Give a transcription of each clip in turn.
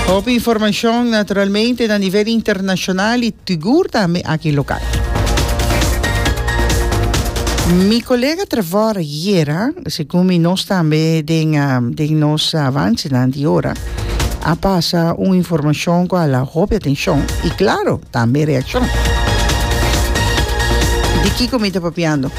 Hopi informashon naturalmente na nivel internashonal i sigur tambe aki lokal. Mi kolega Trevor yera, segun mi nos tambe den den nos avansenan di ora, a pasa un informashon ku a la hopi atenshon i klaro tambe reakshon. Di kiko mi ta papiando?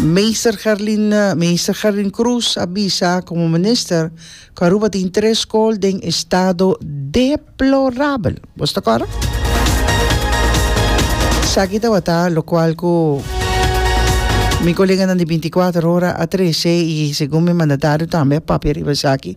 Meester Gerlin Meester Gerlin Croes a bisa como minister cu Aruba tin tres school den estado deplorabel. Vos ta cora? Saki tabata lo cual cu mi coleganan di 24 hora a trece y segun mi mandatario tambe a papia riba esaki.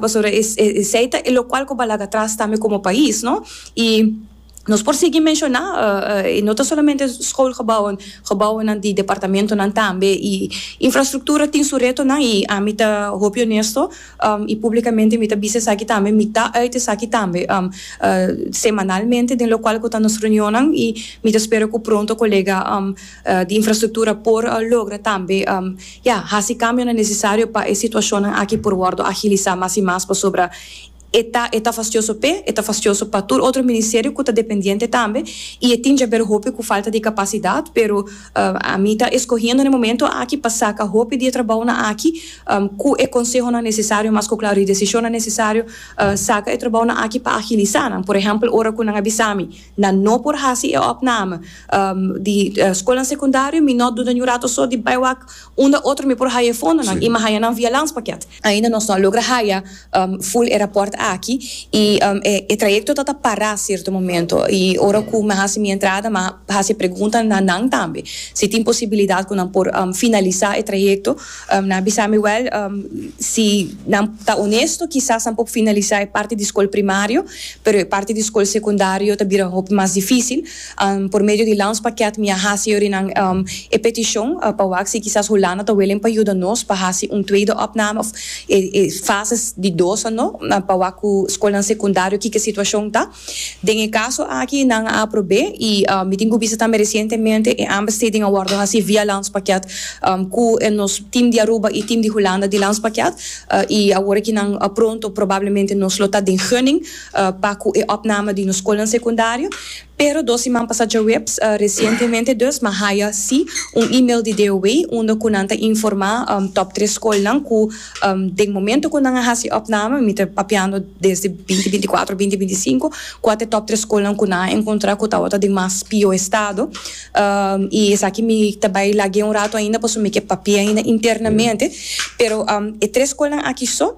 Pasobra esei ta e lokual ku balaga atras tambe komo pais, no? I nos por sigui menshoná, i no ta solamente skoolgebouwen, gebouwennan di departamentonan tambe. I infrastruktura tin su retonan, i ami ta hopi onesto, i públikamente mi ta bisa esaki tambe, mi ta uit esaki tambe semanalmente den lokual ku ta nos reunionnan, i mi ta spera ku pronto kolega. di infrastruktura por logra tambe ya hasi kambionan nesesario pa e situashonnan aki por wòrdu agilisá mas i mas pasobra e ta e ta fastioso p'e, e ta fastioso pa tur otro ministerio ku ta dependiente tambe i e tin djaber hopi ku falta di kapasidat pero ami ta eskohiendo n'e momento aki pa saka hopi di e trabounan aki ku e konsehonan nesesario mas ku klaru di desishonnan nesesario saka e trabounan aki pa agilisá nan por ehèmpel ora ku nan a bisa mi Nan no por hasi e opname di skolnan sekundario, mi no duda ni un rato so di bai wak unda otro mi por haya e fondonan i mi a haya nan via landspaket. Ainda nos no a logra haya ful e raport aki i e trayekto ta ta pará sierto momento i ora ku mi a hasi mi entrada mi a hasi e pregunta na nan tambe si tin posibilidat ku nan por finalisá e trayekto. Nan a bisa mi, Wèl, si nan ta onesto kisas nan por finalisá e parti di skol primario, pero e parti di skol sekundario ta bira hopi mas difísil. Por medio di Landspakket mi a hasi yori nan e petishon pa wak si kisas Hulanda ta welen pa yuda nos pa hasi un tweede opname òf e fases di dos anó pa wak ku skolnan sekundario kiko situashon ta. Den e kaso aki nan a aprob'é i mi tin ku bisa tambe resientemente e aanbesteding a wòrdu hasi via landspakket ku e nos tim di Aruba i tim di Hulanda di landspakket i awor aki nan pronto probablemente nos lo ta den gunning pa ku e òpname di nos skolnan sekundario pero dos siman pasá djaweps resientemente dus mi a haya si un email di DOW unda ku nan ta informá tòp tres skolnan ku. Den momento cu nan a haci opname, mi ta papiando desde binti binti cuatro, binti binti cinco, cua ta e top tres scolnan cu nan a encontra cu tawata den mas pio estado. Y esaki mi ta bay lagu'e un rato ainda pasobra mi ke papia ainda internamente. Pero e tres scolnan aki so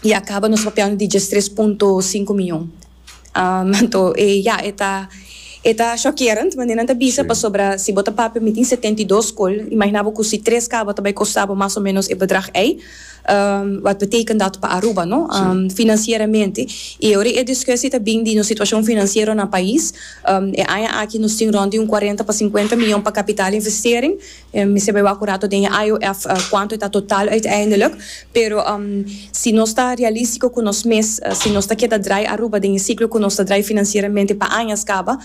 ya caba nos ta papiando di diestres punto cinco miyon. Anto e ya e ta e ta shockerend manera nan ta bisa pasobra si bo ta papia mi tin setenta i dos scol imagina bo cu si tres caba ta bay costa bo mas o menos e bedrag ey wat beteken dat pa Aruba no financieramente y ora e discussie ta bin di nos situacion financiero na pais e aña aki nos tin rond di un cuarenta pa cincuenta million pa capital investering Mi sebe wak un rato den e IOF kuantu e ta total uiteindelijk, pero si nos ta realístiko ku nos mes, si nos ta keda drai Aruba den e siklo ku nos ta drai finansieramente pa añas kaba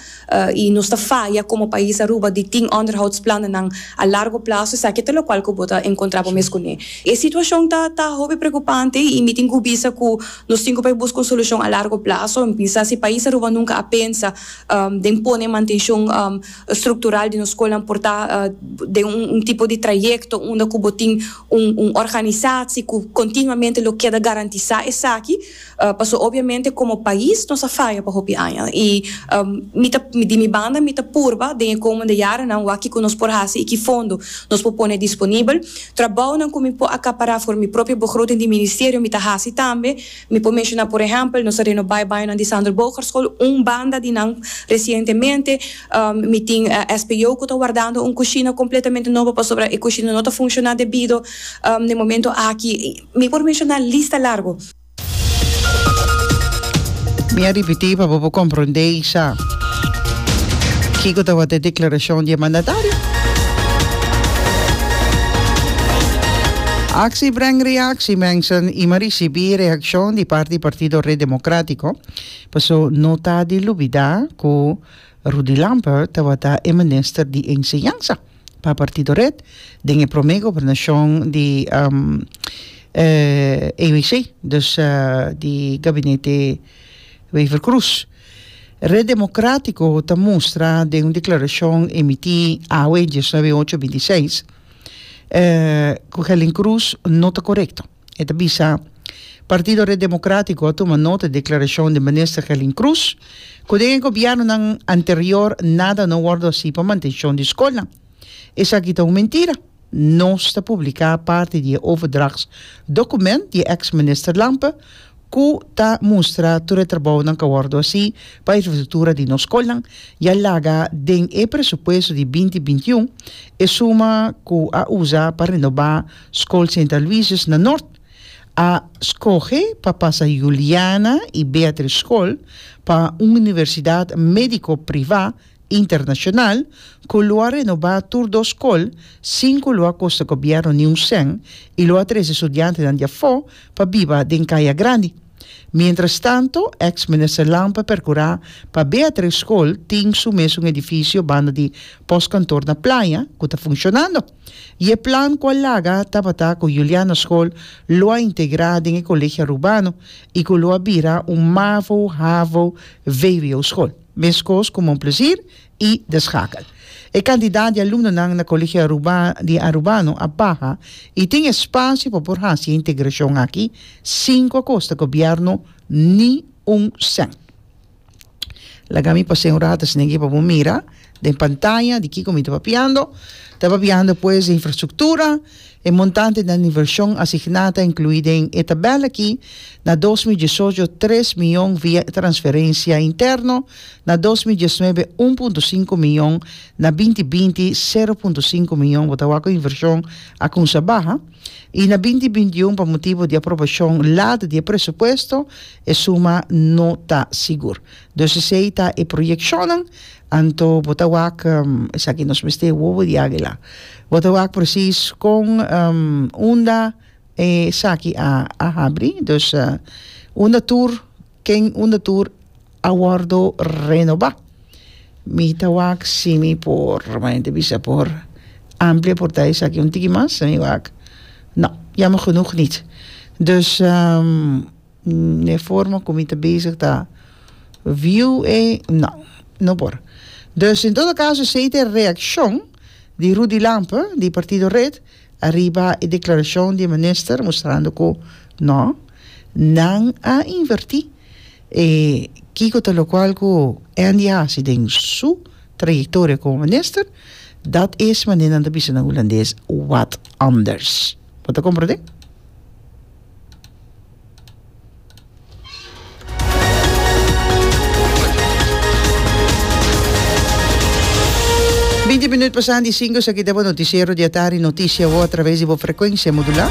i nos ta faya komo pais Aruba di tin onderhoudsplannennan a largo plazo, esaki ta lokual ku bo ta enkontrá bo mes kuné. E situashon ta hopi preokupante i mi tin ku bisa ku nos tin ku por buska un solushon a largo plazo. Mi pensa si pais Aruba nunka a pensa den pone mantenshon struktural di nos skolnan por ta den un tipo di trayekto unda ku bo tin un un organisasi ku kontinuamente lo keda garantisá esaki pasobra obiamente komo pais nos a faya pa hopi aña i mi ta di mi banda mi ta purba den e komunde yarenan wak kiko nos por hasi i ki fondo nos por pone disponibel trabounan ku mi por akapará for mi propio begroting di ministerio mi ta hasi tambe. Mi por menshona por ehèmpel, nos a renobá e bañonan di Sander Bogerschool, un banda di nan resientemente. Mi tin SPO ku ta wardando un kushina kompletamente nobo pasobra e kushina no ta funshoná debido na e momento aki. Mi por menshoná lista largu. Mi a ripití pa bo por komprondé isha. Kiko tabata e deklarashon di e mandatario? Aksi breng reaksi, Manson i Maris. Ricibi reaccion di parti di Partido Red Democratico, paso no ta di lubida cu Rudy Lampert tabata e Minister di Enseñansa pa Partido Red den e prome gobernacion di ABC, dus di Gabinete Wever Croes. Red Democratico ta mustra den un declaracion emiti awe diesnuebe ocho binti seis cu Helen Croes no ta corecto. E ta bisa, Partido Red Democratico a tuma nota di declaracion di Minister Gelin Cruz, cu den e gobiernonan anterior nada no wordo haci pa mantencion di scolnan. Esaki ta un mentira. Nos ta publica parti di e overdrachts document di e ex Minister Lampe cu ta mustra tur e trabounan ca wordo haci pa infrastructura di nos scolnan, ya laga den e presupuesto di binti binti un e suma cu a usa pa renoba Skol Sint Aloysius na Nort a skohe pa pasa Juliana i Beatrice Skol pa un universidat mediko privá internashonal ku lo a renobá tur dos skol sin ku lo a kosta gobièrnu niun sèn i lo a trese studiantenan di afó pa biba den kaya grandi. Mientrastanto, èks minister Lamp a perkurá pa Beatrice Skol tin su mes un edifisio banda di pòskantor na Playa ku ta funshonando. I e plan ku a laga tabata ku Juliana Skol lo a integrá den e Kolegio Arubano i ku lo a bira un mavo, havo, vvo skol, meskos ku Mon Plezier i De Schakel. E kantidat di alumnonan na Kolegio Aruba di Arubano a baha i tin espasio pa por hasi e integrashon aki sin ku a kosta gobièrnu ni un sèn. Laga mi pas'é un rato esnan aki pa bo mira den pantaya di kiko mi ta papiando. Ta papiando pues di infrastruktura, e montante den invershon asigná ta inkluí den e tabèl aki, na dos mil diesocho tres miyon via transferensia interno, na dos mil diesnuebe un punto sinku miyon, na binti binti sero punto sinku miyon, bo ta wak ku invershon a kumsa baha. y na binti bintiun pa motibu di aprobashon lado di e presupuesto e suma no ta sigur. Dus esey ta e proyeccionnan, anto bo ta wak esaki nos mester wowo di águila. Bo ta wak precies con unda esaki a habri, dus unda tur, ken unda tur a wordo renobá. Mi ta wak si mi por, manente bisa por amplia por ta esaki un tiki mas, mi wak no, jammer genoeg niet. Dus um e forma ku mi ta bezig ta view e, no, no por. Dus en todo kaso esei ta e reakshon di Rudy Lampe di Partido Red ariba e deklarashon di e minister mustrando ku no, nan a invertí E kiko ta lokual ku Andy a hasi den su trayektoria komo minister? Dat es, mané nan ta bisa na hulandes, wat anders. Bo ta komprondé? Binti minut pasá di sinku, esaki ta bo notisiero di atardi, notisia bo atraves di bo frekuensia modulá.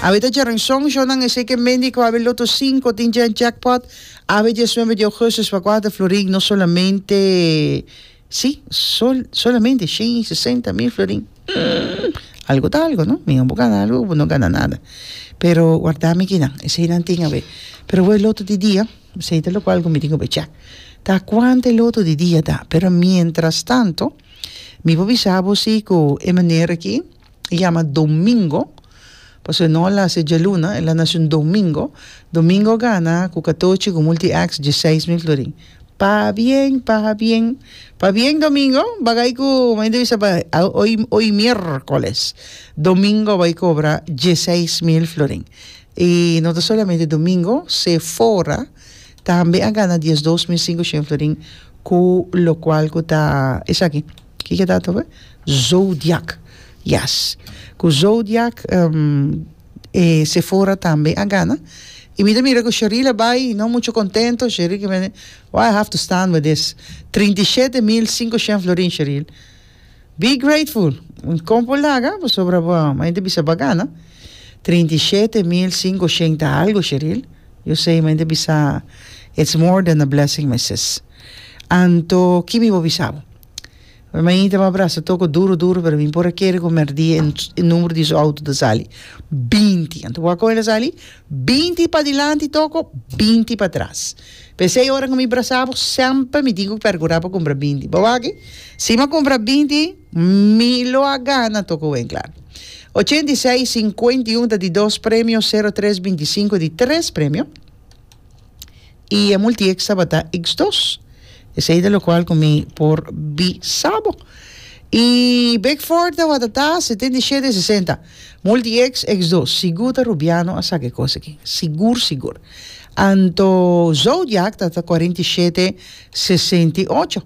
Awe ta djaran. Son shownan esei ke mende ku abri loto sinku tin dje jackpot abri dje suenbe di ougustus pa kual ta florin no solamente si sol solamente shen i sesenta mil florin humm algu ta algu no minan bo gana algu bo no gana nada pero warda mi kinan esei nan tin awe pero awe loto di dia esei ta loke algu mi tin ku bechá ta kuantu e loto di dia ta pero mientras tanto mi por bisa bo si ku e manera aki. E yama domingo, pasobra e no a lasa e djaluna, e la nase un domingo. Domingo gana ku katochi, ku multi acts, dieseis mil florin. Pabien, pabien, pabien domingo, bagay ku mei ta bisa pa hoy, hoy mierkoles, domingo bai kobra dieseis mil florin. I no ta solamente domingo, se fora tambe a gana diesdos mil sinku shen florin, ku lokual ku ta esaki. Kiko ta toca? Zodiak yes cu zodiak e Sephora tambe a gana y mi ta mira cu Sheree la bay y no mucho contento Sheree ki mende why I have to stand with this trinta y shete mil cinco shen florin Sheree be grateful con por laga pasobra bo a gente bisa bo a gana trinta y shete mil cinco shen ta algo Sheree yo sey mi ta bisa it's more than a blessing my sis. Anto ki mi por bisa bo? Mi mainita mi a brasa toko duru duru pero mi por a kere ku merdí e numero di su outo ta sali binti anto kua kon e ta sali binti padilanti toko binti patras p'esei ora ku mi brasa bo semper mi tin ku pergurá pa kumpra binti bo wak si mi a kumpra binti mi lo a gana toko wen kla ochenta i seis sinkuenta i un ta di dos premio sero tres binti sinku ta di tres premio. y e multieks tabata X dos, esey ta locual cu mi por bisa bo. Y Bickford tabata ta setenta y shete sesenta, multieks X dos, sigur ta Rubiano a saca e cos aki, sigur sigur. Anto Zodiac tabata cuarenta y shete sesenta y ocho.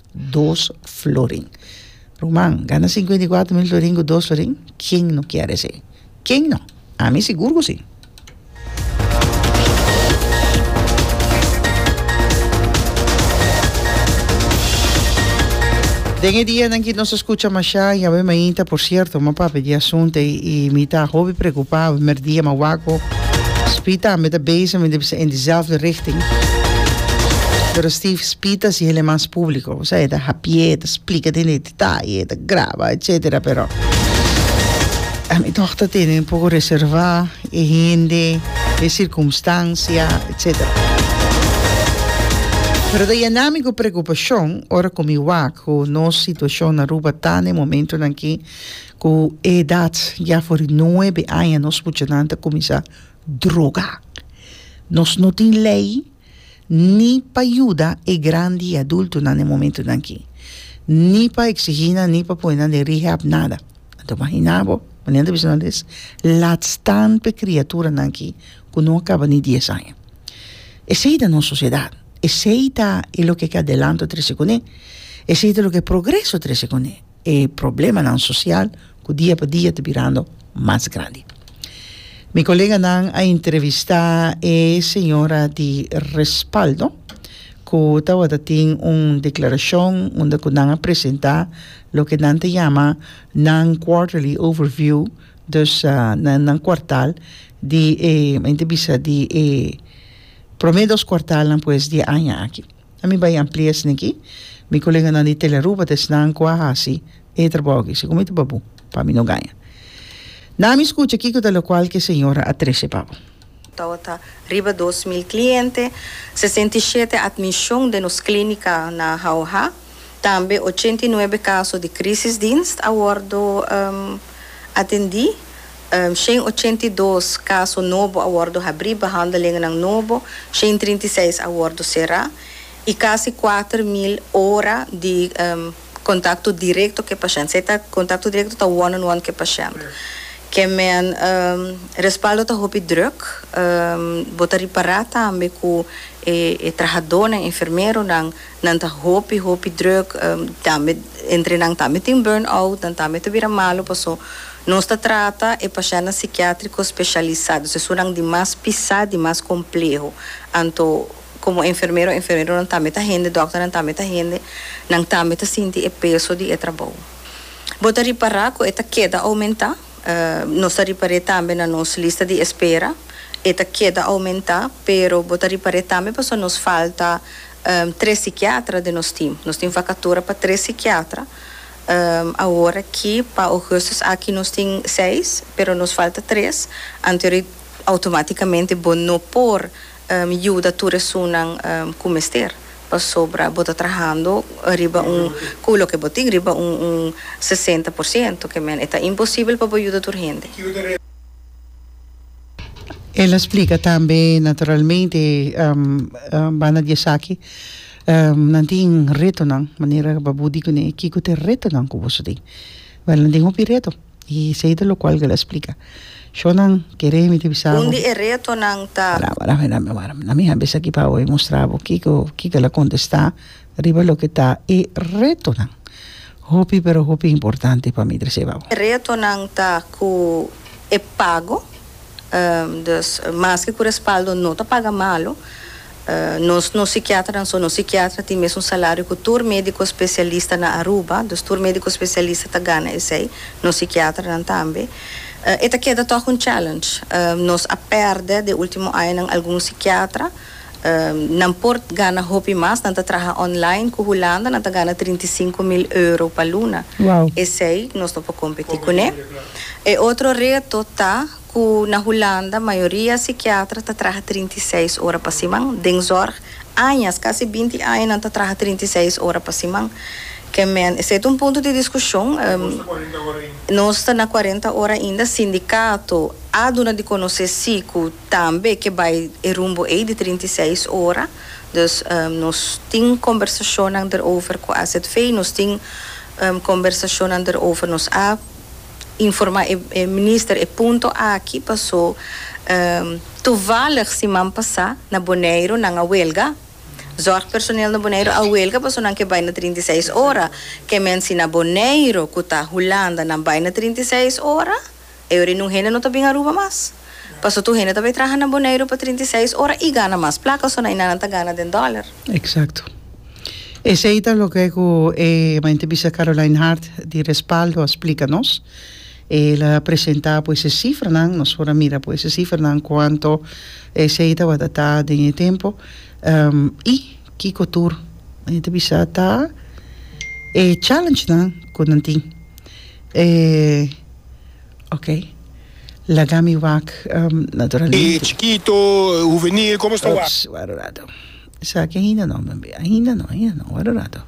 dos florin ruman gana sinkuenta i kuater mil florin ku dos florin ken no kier esei ken no ami sigur ku si. Den e dianan ki nos a skucha mashá i awe mainta por sierto mi a papia di e asuntu ei i mi ta hopi preokupá awe primer dia mi a wak òf Spy tambe ta bezig mi di bisa en dizelfde richting pero Steve Pita si el e mas publico, o sea, e ta hapié, e ta splica den e detaye, e ta graba, etcetera, pero a mi toch ta tene un poco reserva e hende, e circumstancia, etcetera. Pero ta yena mi cu preocupacion ora cu mi wak cu nos situacion na Aruba ta na e momentonan aki cu e edad ya for di nuebe aña nos muchanan ta cuminsa droga. Nos no tin ley. ni pa yuda e grandi i adultunan na e momentunan akí, ni pa eksigí nan ni pa pone nan den rehab nada. Anto imaginá bo, mañana ta bisa nan des latstan pa e kriaturanan akí ku no a kaba ni dies aña. Esei ta nos sosiedat, esei ta e loke ke adelanto trese kuné, esei ta loke progreso trese kuné. E problemanan sosial ku dia pa dia ta birando mas grandi. Mi koleganan a entrevistá e señora di Respaldo ku tabata tin un deklarashon unda ku nan a presentá loke nan ta yama nan quarterly overview, dus nan kuartal di e, men ta bisa di e promé dos kuartalnan pues di e aña aki. A mi bai amplia esnan aki. Mi koleganan di Telearuba ta esnan ku a hasi e trabou aki. Segun mi ta papu, pa mi no gaña. Na mi skucha kiko ta lokual ku e señora a trese pa bo. Tabata ta riba dos mil kliente, sesenta i shete atmishon den nos klínika na Hauha, tambe ochenta i nuebe kaso di krísisdienst a wòrdu atendí. Shen ochenta i dos kaso nobo a wòrdu habrí, behandelingennan nobo, shen trinta i seis a wòrdu será i kasi kuater mil ora di kontakto direkto ku e pashènt. Esei ta kontakto direkto, ta one on one ku e pashènt. Kemen respaldo ta hopi drùk. Bo ta ripará tambe ku e trahadónan, enfermeronan, Nan ta hopi hopi druk, tambe entre nan tambe tin burn-out, nan tambe ta bira malu, paso nos ta trata e pashèntnan sikiátriko speshialisá, dus esun nan di mas pisá, di mas kompleho. Anto komo enfermero, enfermeronan tambe ta hende, dòkternan tambe ta hende, nan tambe ta sinti e peso di e trabou. Bo ta ripará ku e ta keda oumentá? Nos ta ripar'é tambe na nos lista di espera. E ta keda oumentá, pero bo ta ripar'é tambe pasobra nos falta tres sikiatra den nos tim. Nos tin vakatura pa tres sikiatra awor aki. Pa ougùstus aki nos tin seis, pero nos falta tres. Anteori, outomátikamente bo no por. yuda tur esunnan ku mester, pasobra bo ta trahando riba un ku loke bo tin, riba un un sesenta por siento, ke men e ta imposibel pa bo yuda tur hende. El a splika tambe, naturalmente banda di esaki nan tin retonan, manera ku bo di kuné kiko ta e retonan ku boso tin. Bel nan tin hopi reto. I esei ta lokual ku el a splika. Shonnan kere mi ta bisa bo. Un di e retonan ta. Wara wara mi dame wara. Na mi habes aki pa awor mustra bo kiko kiko el a kontestá riba loke ta e retonan. Hopi pero hopi importante pa mi Dreseba bo. Retonan ta ku e pago. Dus maske ku respaldo no ta paga malu. Nos no psikiatranan so. Nos psikiatra tin mesun salario ku tur mediko spesialista na Aruba. Dus tur mediko spesialista ta gana esei. Nos psikiatranan tambe. E ta keda tòg un challenge. Nos a pèrdè den ultimo añanan algun psikiatra. Nan por gana hopi mas. Nan ta traha online ku Hulanda. Nan ta gana trinta i sinku mil euro pa luna. Esei nos no por kompetí kuné. E otro reto ta. Ku na Hulanda mayoria sikiatra ta traha trinta i seis ora pa siman. Den zòrg, añas, kasi binti aña nan ta traha trinta i seis ora pa siman. Ke men, esei ta un punto di diskushon. Nos ta na kuarenta ora ainda. Sindikato a duna di konosé si ku tambe ke bai e rumbo ei di trinta i seis ora. Dus, nos tin kombersashonnan derover ku azv. Nos tin kombersashonnan derover. Nos a. informa e minister e punto aki paso toevallig siman pasa na Boneiru nan a huelga, zorgpersoneel na Boneiru a huelga paso nan ke bai na trinta i seis ora, ke men si na Boneiru ku ta Hulanda nan bai na trinta i seis ora, eori nun hende no ta bin Aruba mas. Paso tur hende ta bay traha na Boneiru pa trinta i seis ora y gana mas placa, so na eynan nan ta gana den dollar. Exacto. Esey ta loke cu e Maintebister Caroline Hart di Respaldo a splica nos. El a presenta pues e cifranan, nos por a mira pues e cifranan cuanto esey tabata ta den e tempo y kico tur nan ta bisa ta e challengenan cu nan tin. E. Ok. Laga mi wak naturalmente. E chikito, e huvenil, komo sta wak? Oops, wara un rato. Esaki ainda no, bembe. Ainda no, ainda no, wara un rato.